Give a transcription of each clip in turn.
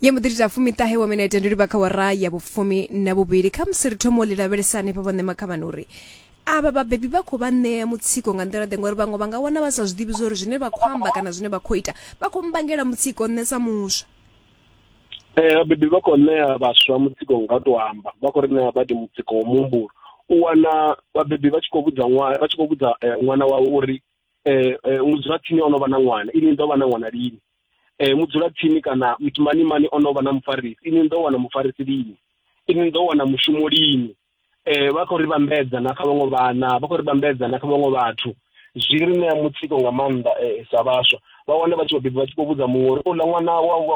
ya muḓiri dza fumitahe wa minete ndi livha kha wara ya vhufumi na vhuvhili kha musi ri thomo ḽi lavhelesani pa vhone makhavhani uri avha vhabebi vha khou vha ṋea mutsiko nga nḓila ḓe ngori vhaṅwe vha nga wana vha sa zwiḓivhi zwa uri zwine vha khou amba kana zwine vha khou ita vha khou mbangela mutsiko nṋe sa muswa eh vhabebi vha khou ṋea vhaswa mutsiko nga to amba vha khou ri ṋea badi mutsiko wa muhumbulo u wana vhabebi vha tshi khou vhudza ṅwana vha tshi khou vhudza eh, ṅwana wawe uri eh, eh mudzulatsini o no vha na ṅwana ini ndo vha na ṅwana lini eh, mudzulatsini kana mani o no vha na mufarisi ini ni ḓo wana mufarisi lini ini ni ḓo wana mushumo lini eh, vha khou ri vhambedza na kha vhaṅwe vhana vha khou ri vhambedza na kha vhaṅwe vhathu zwi ri ṋea mutsiko nga maanḓa eh, sa vhaswa vha wane vha tshi vhabebi vha tshi khou vhudza muṅwe uri uḽa ṅwana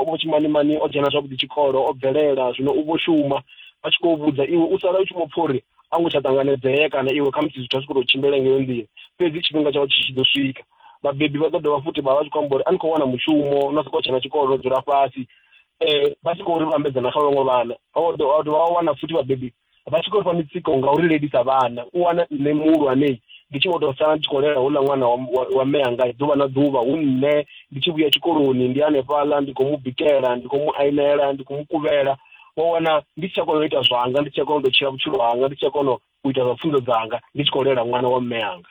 wa tshimanimani o dzhena zwavhuḓi tshikolo o bvelela zwino u vho shuma vha tshi khou vhudza iwe u sala u tshi mu pfha uri a ngo tsha ṱanganedzea kana iwe khamusi zwithu a zwi khou tou tshimbila ngeyo nḓila fhedzi tshifhinga tshawe tshi tshi ḓo swika vhabebi vha ḓo dovha futhi vha vha tshi khou amba uri a ni khou wana mushumo no sokou tshena tshikolo no dzula fhasi um vha tshi khou ri vhambedzana kha vhaṅwe vhana vha dovha wa wana futhi vhabebi vha tshi khou ri fha mitsiko nga uri lelisa vhana u wana nṋe muhulwanei ndi tshi vho tou sala ndi tshi khou lela houḽa ṅwana wa mme anga ḓuvha na ḓuvha hu nṋe ndi tshi vhuya tshikoloni ndi hanefhaḽa ndi khou mu bikela ndi khou mu ainela ndi khou mu kuvhela wa wana ndi si tsha kona u ita zwanga ndi si tsha kona u tou tshila vhutshilo hanga ndi si tsha kona u ita zwa pfunzo dzanga ndi tshi khou lela ṅwana wa mme anga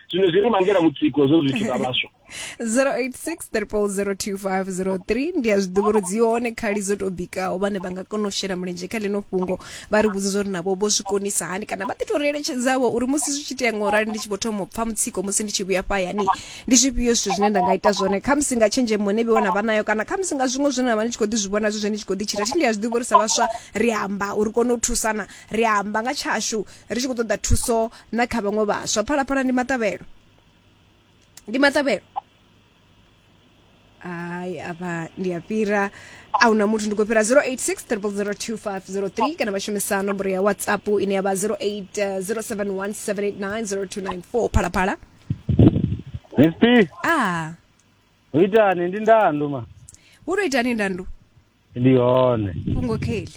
zwino zwi ri vhangela mutsiko zwo zwithu zwa vhaswa 0860002503 ndi a zwi ḓivha uri dzi hone khali dzo tou bikaho vhane vha nga kona u shela mulenzhe kha ḽino fhungo vha ri vhudze zwa uri navho vho zwi konisa hani kana vha ḓi tou ri eletshedzavho uri musi zwi tshi itea nga u rali ndi tshi vho thoma u pfa mutsiko musi ndi tshi vhuya fhayani ndi zwifhio zwithu zwine nda nga ita zwone khamusi nga tshenzhemo ne vhiwa na vha nayo kana khamusi nga zwiṅwe zwine na vha ni tshi khou ḓi zwi vhona zwi zwe ni tshi khou ḓi tshila thi ndi a zwi ḓivha uri sa vhaswa ri amba uri kone u thusana ri amba nga tshashu ri tshi khou ṱoḓa thuso na kha vhaṅwe vhaswa phalaphala ndi maṱavhelo ndi maṱavhelo hayi apa ndi a fhira a huna muthu ndi khou fhira 0863002503 kana vha shumisa nomboro ya whatsapp ine ya vha 080717890294 phalaphala Mp, a u itani ndi ndandu ma. wo tou itani ndandu Ndi hone. fhungo kheli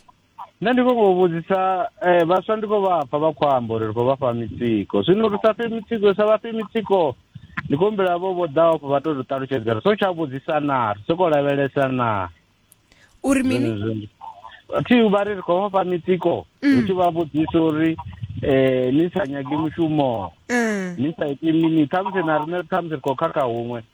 nṋe ndi khou ngo vhudzisa eh, vhaswa ndi khou vha pfa vha khou amba uri ri khou vha fha mitsiko zwino ri sa fhe mitsiko sa vha fhe mitsiko ndi khou humbela vho vho ḓaho afho vha to ri ṱalutshedza ri so tsha vhudzisa naa ri sokou lavhelesa naa uri mini Zwenezwo. thi vha ri ri khou vha fha mitsiko ri tshi vha vhudzisa uri um ni sa nyagi mushumo Mm. ni sa iti mini khamusi na riṋe khamusi ri khou khakha huṅwe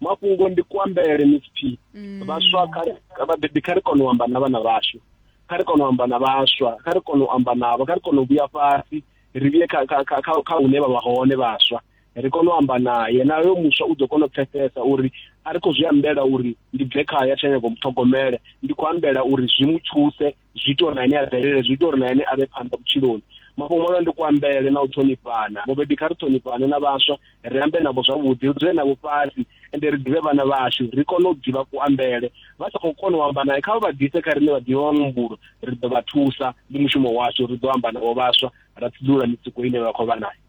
mafhungo ndi kuambele msp mm. vhaswa vhabebi kha ri kone u amba na vhana vhashu kha ri kone u amba na vhaswa kha ri kone u amba navho kha ri kone u vhuya fhasi ri vhuye kha hune vha vha hone vhaswa ri kone u amba naye nayo muswa u ḓo kona u pfesesa uri a ri khou zwi ambela uri ndi bve khaya tsha nyago muṱhogomele ndi khou ambela uri zwi mu thuse zwi ita uri na ene a bvelele zwi ita uri na ene a vhe phanḓa vhutshiloni mafhungo mavhe ndi kuambele na u ṱhonifhana mubebi kha ri ṱhonifhane na vhaswa ri ambe navho zwavhuḓi ri dzule navho fhasi ende ri ḓivhe vhana vhashu ri kone u ḓivha kuambele vha sa khou kona u amba naye kha vha vha ḓise kha riṋe vha ḓivha wa mumbulo ri ḓo vha thusa ndi mushumo washu ri ḓo amba navho vhaswa ra tsiḓulula mitsiko ine vha khou vha nayo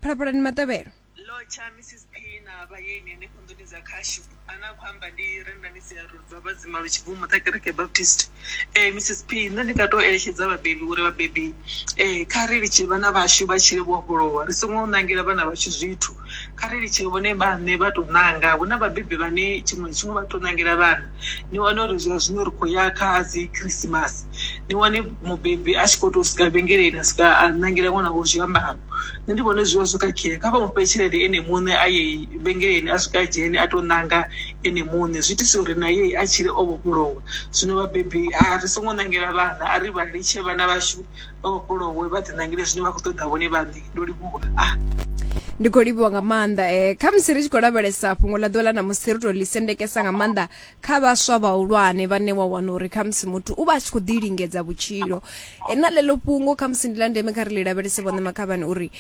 phalaphalani matevhelo lotsha mrs p na vhayeni henefho nḓuni dza khashu ane a khou amba ndi rendanisi ya rodzwa vhadzima lutshibvumo ṱa kereke baptist um mrs p nṋe ndi nga tou eletshedza vhabebi uri vhabebi um kha ri litshe vhana vhashu vha tshile vho vhofholowa ri songo ṋangela vhana vhashu zwithu Kha ri litshe vhone vhaṋe vha tou ṋanga. Hu na vhabebi vhane tshiṅwe na tshiṅwe vha tou ṋangela vhana. Ni wane uri zwa zwino ri khou ya kha dzi Khirisimasi, ni wane mubebi a tshi khou tou swika vhengeleni a swika a ṋangela ṅwana wawe zwiambaro. Nṋe ndi vhona zwi vha zwo khakhea, kha vha mu fhe tshelede ene muṋe a ye vhengeleni a swike a dzhene a tou ṋanga ene muṋe. Zwi itisa uri na ye a tshile o vhofholowa. Zwino vhabebi ri songo ṋangela vhana, a ri vha litshe vhana vhashu vha vhofholowe vha ḓi ṋangile zwine vha khou ṱoḓa vhone vhaṋe ndo livhuwa ah. ndi khou livhuwa nga maanḓa um eh, khamusi ri tshi khou lavhelesa fhungo ḽa ḓuvha ḽa namusi ri to ḽi sendekesa nga maanḓa kha vhaswa vhahulwane vhane wa wana uri khamusi muthu u vha a tshi khou ḓi lingedza vhutshilo eh, na ḽeḽo fhungo khamusi ndi ḽa ndeme kha ri ḽi lavhelese vhone makhavhani uri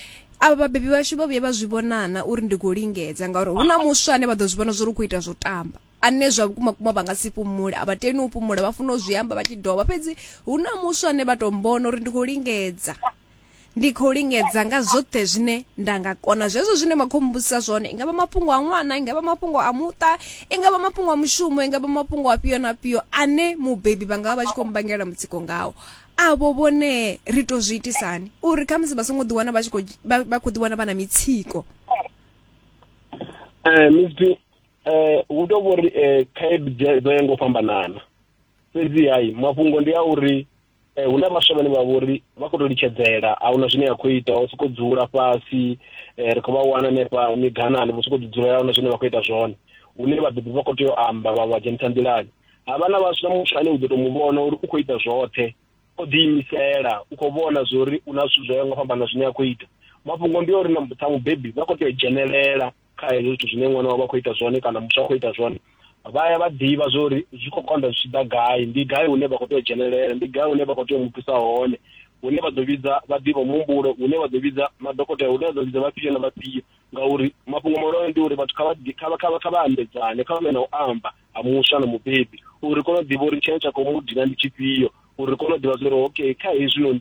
avha vhabebi vhashu vha vhuye vha zwi vhonana uri ndi khou lingedza ngauri hu na muswa ane vha ḓo zwi vhona zwo ri khou ita zwo tamba ane zwa vhukuma kuma vha nga si fhumule a vha teni u fhumula vha funa u zwi amba vha tshi dovha fhedzi hu na muswa ane vha tou mbona uri ndi khou lingedza ndi khou lingedza nga zwoṱhe zwine nda nga kona zwezwo zwine vha khou mmbusisa zwone i nga vha mafhungo a ṅwana i nga vha mafhungo a muṱa i nga vha mafhungo a mushumo i nga vha mafhungo a fhio na fhio ane mubebi vha nga vha vha tshi khou mbangela mutsiko ngawo avho vhone ri tou zwi itisani uri khamusi vha songo ḓiwana vha tshi khou vha khou ḓiwana vha na mitsiko um eh hu tou vhori eh khaedu dzo ya ngo fhambanana fhedzi hayi mafhungo ndi a uri eh huna vhaswa vhane vha vhori vha khou tou litshedzela a huna zwine ya khou ita o sokou dzula fhasi eh ri khou vha wana hanefha miganani vho sokou dzidzulela huna zwine vha khou ita zwone hune vhabebi vha khou tea u amba vha vha dzhenisa nḓilani ha vha na vhaswa muthu ane u ḓo tou mu vhona uri u khou ita zwoṱhe o ḓiimisela u khou vhona zwo uri u na zwithu zwo ya ngo fhambana zwine a khou ita mafhungo ndi uri na mutha mubebi vha khou tea u dzhenelela kha hezwo zwithu zwine ṅwana wavho a khou ita zwone kana muswa a khou ita zwone vha ya vha ḓivha zwa uri zwi khou konḓa zwi tshi ḓa gai ndi gai hune vha khou tea u dzhenelela ndi gai hune vha khou tea u mu thusa hone hune vha ḓo vhidza vha ḓivha muhumbulo hune vha ḓo vhidza madokotela hune vha ḓo vhidza vhafhio na vhafhio ngauri mafhungo mahulwane ndi uri vhathu kha vha kha vha kha vha kha vha ambedzane kha vhe na u amba ha muswa na mubebi uri kone u ḓivha uri tshine tsha khou mu dina ndi tshifhio uri kone u ḓivha zwa uri okay kha hezwinoni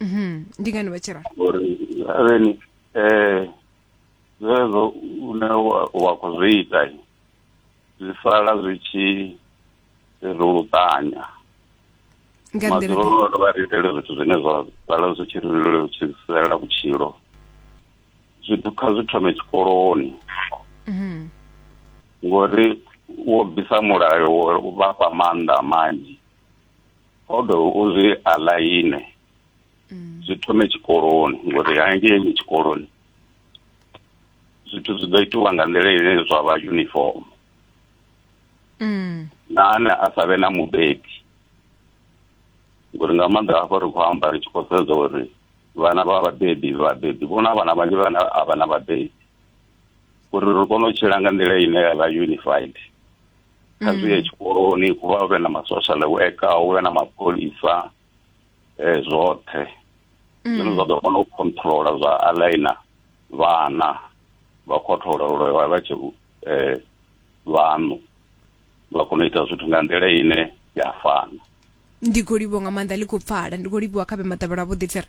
Mhm. ndi ngani vha tshi ralo ngori havheni um zwezwo une wa- wa khou zwi ita zwi sala zwi tshi ri luṱanya nga nḓila maḓuvha ḓe- ono vha ri itele zwithu zwine zwa sala zwi tshi ri lutshisela vhutshilo zwithu kha zwi thome tshikoloni Mhm. ngori wo bvisa mulayo wo vhafha maanḓa manzhi o do uzwi aḽaine mm. zwi thome tshikoloni ngori hangei tshikoloni zwithu zwi ḓo itiwa nga nḓila ine zwa vha uniform mm. na ane a sa vhe na mubebi ngori nga maanḓa hafho ri khou amba ri tshi khou sedza uri vhana vha vhabebi vhabebi vhona vhana vhanzhi vhana a vha na vhabebi uri ri kone u tshila nga nḓila ine ya vha unified kha zwi ye mm. tshikoloni hu vha vhe na masocial worker hu vhe na mapholisa um zwoṱhe mm. zwine zwa ḓo kona u controla zwa alaina vhana vha khothola uri vha vha tshi um eh, vhaṋu vha kona u ita zwithu nga nḓila ine ya fana ndi khou livhuwa nga maanḓa ḽi khou pfala ndi khou livhuwa kha vhe maḓavhelo a vhuḓi tsere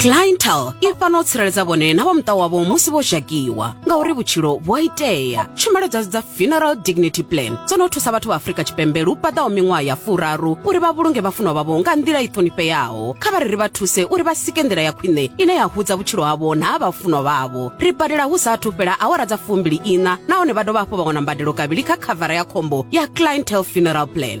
cliental i fana u tsireledza vhone na vha muṱa wavho musi vho zhakiwa ngauri vhutshilo vhu a itea tshumelo dzashu dza funeral dignity plan dzo no thusa vhathu vha afrika tshipembe lu paḓaho miṅwaha ya furaru uri vha vhulunge vhafunwa vhavho nga nḓila i ṱhonifheaho kha vha ri ri vha thuse uri vha sike nḓila ya khwine ine ya hudza vhutshilo havho na ha vhafunwa vhavho ri badela hu sa athu fhela awara dza fumbili ina nahone vha dovha hafhu vha wana mbadelo kavhili kha khavara ya khombo ya cliental funeral plan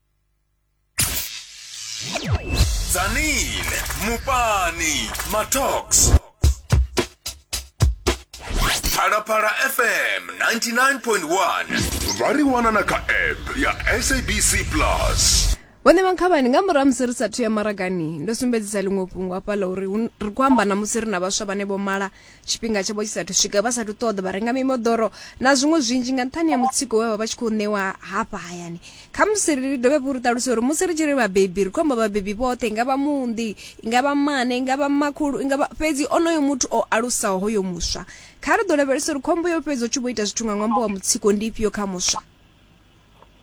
Zanin, Mupani, Matox. Phalaphala FM 99.1 vha ri wana na kha app ya sabc plus vhone vhankhavhani nga murahu musi ri sathu ya maragani ndo sumbedzisa ḽiṅwe fhungo hafha ḽa uri hu- ri khou amba na musi ri na vhaswa vhane vho mala tshifhinga tshavho tshi sathu swika vha sathu ṱoḓa vha renga mimoḓoro na zwiṅwe zwinzhi nga nṱhani ya mutsiko we vha vha tshi khou ṋewa hafha hayani kha musi ri dovhe vhu ri ṱaluse uri musi ri tshi ri vhabebi ri khou amba vhabebi vhoṱhe nga vha mundi nga vha mane nga vha makhulu nga fhedzi onoyo muthu o alusaho hoyo muswa kha ri ḓo lavhelesa uri khombo yo fhedzi u tshi vho ita zwithu nga ṅwambo wa mutsiko ndi ifhio kha muswa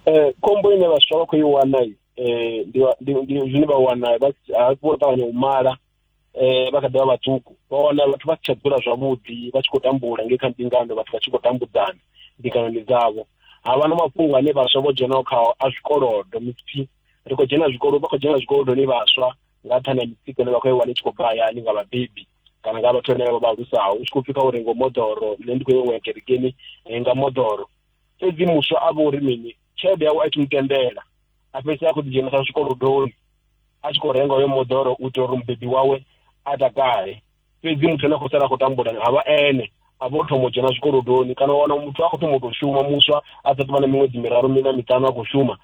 um khombo ine vhaswa vha khou i wana um ndi zwine vha wana vha ṱavhanya u mala eh vha kha ḓivha vhaṱuku vha wana vhathu vha si tsha dzula zwavhuḓi vha tshi khou tambula ngei kha mbingano vhathu vha tshi khou tambudzana mbinganoni dzavho ha vha na mafhungo ane vhaswa vho dzhenaho khao a zwikolodo mipfi ri khou dzhena zwikolo vha khou dzhena zwikolodoni vhaswa nga nṱhani ha mitsiko ine vha khou i wana i tshi khou bva hayani nga vhabebi kana nga vhathu vhane vha vha alusaho u tshi khou pfhi kha uri ngo moḓoro nṋe ndi khou yo ṅwea kerekeni nga moḓoro fhedzi muswa a vha uri mini tshelede yawe a tshi mu tendela a fhedzi a khou ḓi dzhenisa zwikolodoni a tshi khou renga hoyo moḓoro u itela uri mubebi wawe a takale fhedzi muthu ane a khou sala a khou tambula ha vha ene a vho thoma u dzhena zwikolodoni kana wana muthu a khou thoma u tou shuma muswa a sa tovha na miṅwedzi miraru mina miṱanu a khou shuma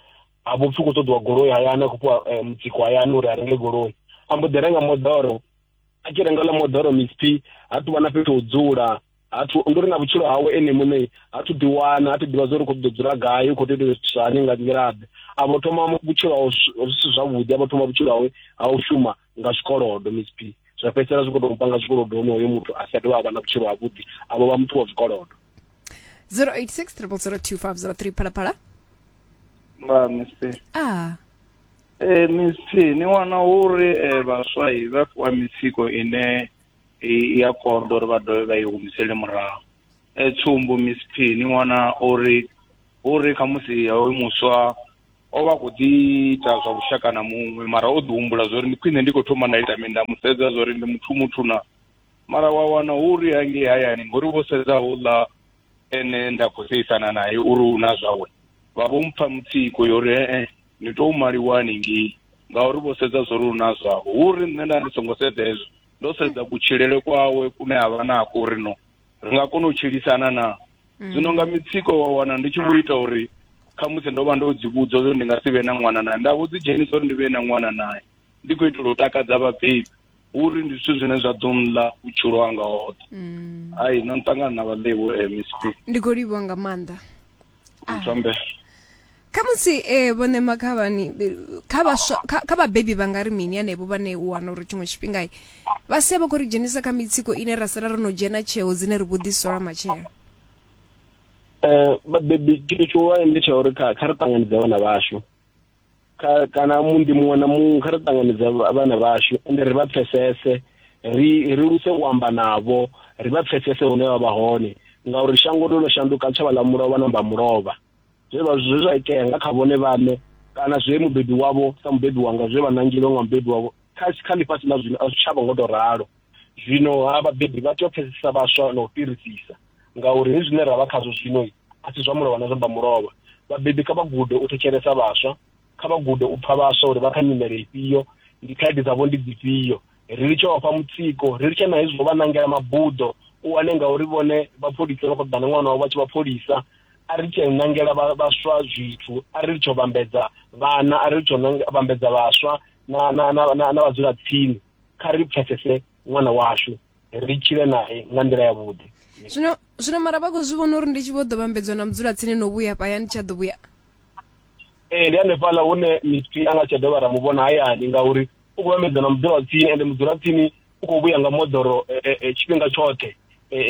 a vho pfhi u khou ṱoḓiwa goloi hayani a khou fhiwa eh, mutsiko hayani uri a renge goloi a mbo ḓi renga moḓoro a tshi renga ḽa moḓoro misp ha tuvha na fhethu u dzula hathu ndi uri na vhutshilo hawe ene muṋe hathu ḓi wana hathu ḓivha zwa uri khou ḓo dzula gai u khou tea zwithu zwani nga nḓilaḓe a vho thoma vhutshilo hawe zwisi zwavhuḓi a vho thoma vhutshilo hawe ha u shuma nga zwikolodo miss p zwa fhedzisela zwi khou tou panga zwikolodo hone hoyo muthu a si a dovha a vha na vhutshilo havhuḓi a vho vha muthu wa zwikolodo 086 0002503 phalaphala ma miss p ah eh miss p ni wana uri eh, vhaswa vha fhiwa mitsiko ine i ya konḓa uri vha dovhe vha i humisele murahu e tsumbo miss p ni wana uri uri khamusi hoyu muswa o vha khou ḓi ita zwa vhushaka na muṅwe mara o ḓi humbula zwa uri ndi khwine ndi khou thoma nda ita mini nda mu sedza zwa uri ndi muthu muthu na mara wa wana hu uri hangei hayani ngori vho sedza houḽa ene nda khou seisana naye uri u na zwawe vha vho mpfa mutsiko yo uri ee ni tou maliwa haningei ngauri vho sedza zwo ri u na zwavho hu uri nṋe nda ndi songo sedza hezwo ndo sedza kutshilele kwawe kune a vha nako uri no ri nga kona u tshilisana na zwino nga mitsiko wa wana ndi tshi vho ita uri khamusi ndo vha ndo dzi vhudza uri ndi nga si vhe na ṅwana naye nda vho dzi dzhenisa uri ndi vhe na ṅwana naye ndi khou itela u takadza vhabebi uri ndi zwithu zwine zwa ḓo nḽa vhutshilo hanga hoṱhe mm. ai na nṱangana na vhaḽevho eh, mcp ndi khou livhiwa nga maanḓa ah. thombe kha musi um eh, vhone makhavhani kha vhaswa kha vhabebi vha nga ri mini anevho vhane u wana uri tshiṅwe tshifhinga vha sia vha khou ri dzhenisa kha mitsiko ine ra sala ro no dzhena tsheo dzine ri vho ḓisola matshelo um vhabebi tshithu tshihulwane ndi tsha uri kha ri ṱanganedze vhana vhashu kha kana mundi muṅwe na muṅwe kha ri ṱanganedza vhana vhashu ende ri vha pfesese ri ri luse u amba navho ri vha pfesese hune vha vha hone ngauri shango ndo no shanduka tshavha ḽa mulovha na mbamulovha zwe vha zwe zwa itea nga kha vhone vhaṋe kana zwe mubebi wavho sa mubebi wanga zwe vha nangilwe nga mubebi wavho kha kha ḽifhasi ḽa zwino a zwi tshavha ngo to ralo zwino ha vhabebi vha tea u pfesesa vhaswa na u fhirisisa ngauri hezwi zwine ra vha khazwo zwino a si zwa mulovha na zwa mulovha vhabebi kha vha gude u thetshelesa vhaswa kha vha gude u pfha vhaswa uri vha kha nyimele ifhio ndi khaedu dzavho ndi dzifhio ri litshe vha fha mutsiko ri litshe na hezwo vha nangela mabuḓo u wane ngauri vhone vhapholisa vha khou ḓana ṅwana wavho vha tshi vhapholisa a ri tshe nangela vhaswa zwithu a ri litshe u vhambedza vhana a ri litshe u vhambedza vhaswa na na na na vhadzula tsini kha ri pfesese ṅwana washu ri tshile naye nga nḓila ya vhuḓi zwino zwino mara vha khou zwi vhona uri ndi tshi vho ḓo vhambedzwa na mudzula tsini no vhuya paya ndi tsha ḓo vhuya ee ndi hanefhaḽa hune misi a nga tsha dovha ra mu vhona hayani ngauri u khou vhambedzwa na mudzula tsini ende mudzula tsini u khou vhuya nga moḓoro e, e, e, tshifhinga tshoṱhe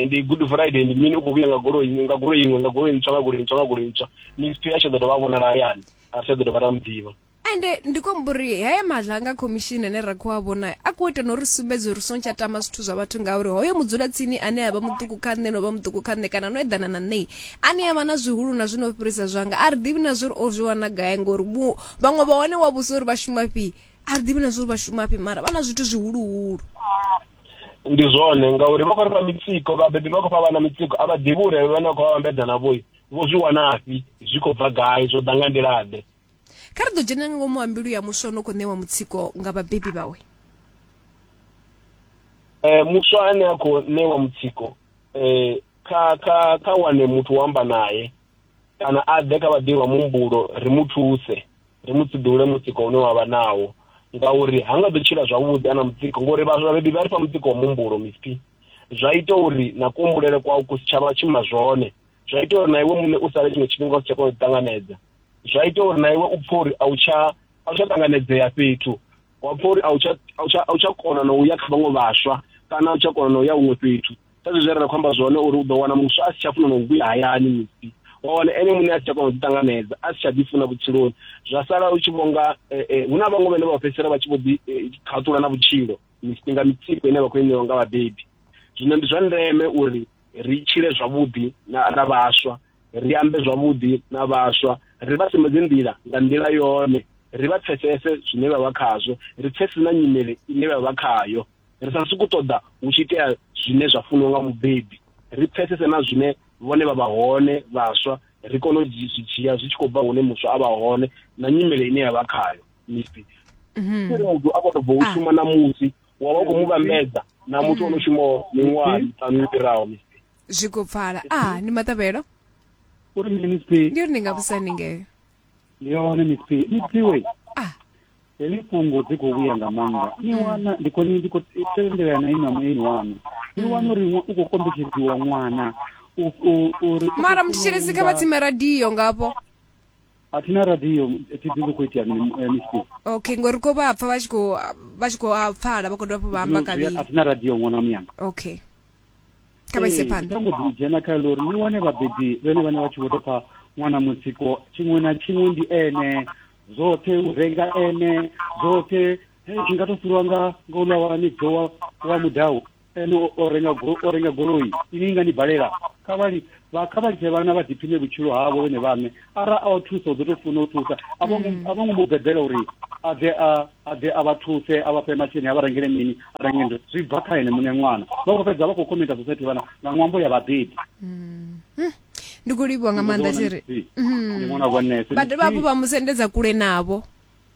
ndi good friday ndi mini u khou vhuya nga goloi nga goloi iṅwe nga goloi ntswa nga goloi ntswa nga goloi ntswa misi a tsha ḓo dovha a vhonala hayani a tsha ḓo dovha ra mu ḓivha ende ndi khou amba uri haya maḓla nga khomishini ane ra khou a vhona a khou ita no ri sumbedza uri songo tsha tama zwithu zwa vhathu ngauri hoyo mudzulatsini ane a vha muṱuku kha nṋe no vha muṱuku kha nṋe kana no eḓana na nṋei ane a vha na zwihulu na zwino fhirisa zwanga a ri ḓivhi na zwa uri o zwi wana gai ngori vhaṅwe vha hone wa vhusa uri vha shuma fhi a ri ḓivhi na zwa uri vha shuma fhi mara vha na zwithu zwihuluhulu ndi zwone ngauri vha khou ri fha mitsiko vhabebi vha khou fha vhana mitsiko a vha ḓivhi uri vhane vha khou vha vhambedza na vhoi vho zwi wanafhi zwi khou bva gai zwo ḓa nga nḓilaḓe kha ri ḓo dzhena nga ngomu ha mbilu ya muswa no khou ṋewa mutsiko nga vhabebi vhawe eh muswa ane a khou ṋewa mutsiko eh kha kha kha wane muthu wa amba naye kana a ḓe kha vhaḓivha muhumbulo ri mu thuse ri mu tsiḓule mutsiko une wa vha nawo ngauri ha nga ḓo tshila zwavhuḓi ana mutsiko ngori vhabebi vha ri fha mutsiko wa muhumbulo mispi zwa ita uri na kuhumbulele kwau ku si tshavha tshima zwone zwa ita uri na iwe muṋe u sale tshiṅwe tshifhinga u si tsha kona u ṱanganedza zwa ita uri na iwe u pfhe uri a u tsha a u tsha ṱanganedzea fhethu wa pfha uri a u tsha a u tsha a u tsha kona na u ya kha vhaṅwe vhaswa kana a u tsha kona na u ya huṅwe fhethu sa zwe zwe ra khou amba zwone uri u ḓo wana muswa a si tsha funa na u vhuya hayani musi wa wana ene muṋe a si tsha kona u ḓiṱanganedza a si tsha ḓifuna vhutshiloni zwa sala u tshi vhonga eh, eh, hu na vhaṅwe vhane vha fhedzisela vha tshi vho ḓi eh, khaṱula na vhutshilo nga mitsiko ine vha khou i ṋewa nga vhabebi zwino ndi zwa ndeme uri ri tshile zwavhuḓi na, na vhaswa ri ambe zwavhuḓi na vhaswa ri vha sumbedze nḓila nga nḓila yone ri vha pfesese zwine vha vha khazwo ri pfesese na nyimele ine vha vha khayo ri sa suku ṱoḓa hu tshi itea zwine zwa funiwa nga mubebi ri pfesese na zwine vhone vha vha hone vhaswa ri kone u zwi dzhia zwi tshi khou bva hune muswa a vha hone na nyimele ine ya vha khayo mipi mhm. ri muthu a khou tou bva u ah. shuma na musi wa vha u khou mu vhambedza na muthu ono shumaho miṅwaha miṱanu yo fhiraho msp zwi khou pfala ah ndi maṱavhelo uri mini msp ndi uri ndi nga vhusa ningeyo yone msp msp we ah heḽi fhungo dzi khou vhuya nga maanḓa ni wana ndi khou ndi khou tendelea na ina mueni wanu ni wana uri ṅwa- u khou kombetshedziwa ṅwana u- u- uri mara mthetshelesi kha vha tsime radio ngafho a thi na radio thi ḓivhi khou itea mini eh, miss Big. okay ngori ko vha pfa vha tshi khou vha tshi khou a pfala vha khou dovha hafhu vha amba Zwino zwi- kavhili a thi na radio ṅwana muyanga okay kha vha ise Ee, phanḓa ndi songo dzhena kha ḽo uri ni wane vhabebi vhene vhane vha tshi vho tou pfa ṅwana mutsiko tshiṅwe na tshiṅwe ndi ene zwoṱhe u renga ene zwoṱhe hei, zwi nga to fhiriwa nga nga uḽa wa ni bvowa wa mudau ene o renga o renga goloi ini nga ni balela kha vha vha kha vha litshe vhana vha ḓiphine vhutshilo havho vhone vhaṋe ara a o thusa u ḓo tou funa u thusa a vho mm. ngo mu bebela uri a ḓe a a ḓe a vha thuse a vha fhe masheleni a vha rengele mini a renge ndo zwi bva kha ene muṋe ṅwana vha khou fhedza vha khou khomenta society vhana nga ṅwambo ya vhabebi mm. hm. ndi khou livhiwa nga maanḓa tshiri mm. vha dovha hafhu vha mu sendedza kule navho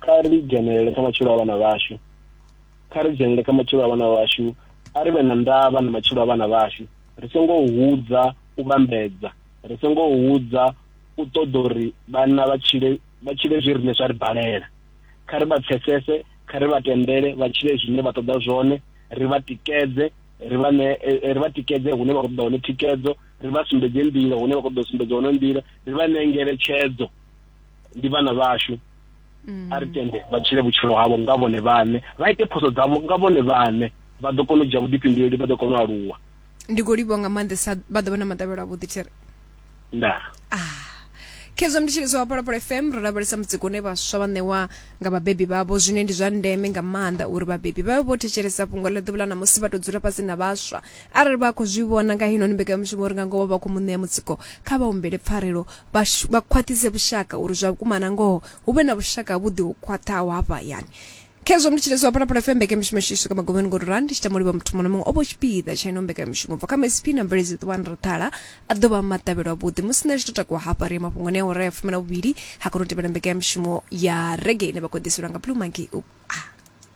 kha ri dzhenelele kha matshilo a vhana vhashu kha ri dzhenelele kha matshilo a vhana vhashu a ri vhe na ndavha na matshilo a vhana vhashu ri songo hudza u vhambedza ri songo hudza u ṱoḓa uri vhana vha tshile vha tshile zwi rine zwa ri balela kha ri vha pfesese kha ri vha tendele vha tshile zwine vha ṱoḓa zwone ri vha tikedze ri vha ne eh, eh, ri vha tikedze hune vha khou ṱoḓa hone thikedzo ri vha sumbedze nḓila hune vha khou ṱoḓa sumbedza hone nḓila ri vha ṋee ngeletshedzo ndi vhana vhashu a ri tende vha tshile vhutshilo havho nga vhone vhaṋe vha ite phoso dzavho nga vhone vhaṋe vha ḓo kona u dzhia vhuḓifhinduleli vha ḓo kona u aluwa ndi khou livhuwa nga maanḓesa vha ḓo vha na maḓavhelo avhuḓi there nda ah khezwo mnditsheleso wa phalaphala fm ro lavhelesa mutsiko une vhaswa vha ṋewa nga vhabebi vhavho zwine ndi zwa ndeme nga maanḓa uri vhabebi vha vhe vho thetshelesa fhungo ḽa ḓuvha ḽa ṋamusi vha tou dzula fhasi na vhaswa arali vha khou zwi vhona nga heinoni mbekanyamushumo uri nga ngoho vha khou mu ṋea mutsiko kha vha humbele pfarelo vha shu- vha khwaṱhise vhushaka uri zwa vhukuma na ngoho hu vhe na vhushaka havhuḓi ho khwaṱhaho hafha hayani khezwo mndu tshileswa hafha na phala fm mbekanyamushumo yashu isuka magomeni ngori rani ndi tshi tama u livha muthu muṅwe na muṅwe o vho tshipiḓa tsha ino mbekanyamushumo bva kha msp na mveledzo ṱuwani ri ṱhala a ḓo vha maṱavhelo avhuḓi musi nṋe tshi to takuwa hafha ri ya mafhungoni a ora ya fumi na vhuvhili ha kona u tevhela mbekanyamushumo ya rege ine vha khou ḓiselwa nga blue monkey u ah.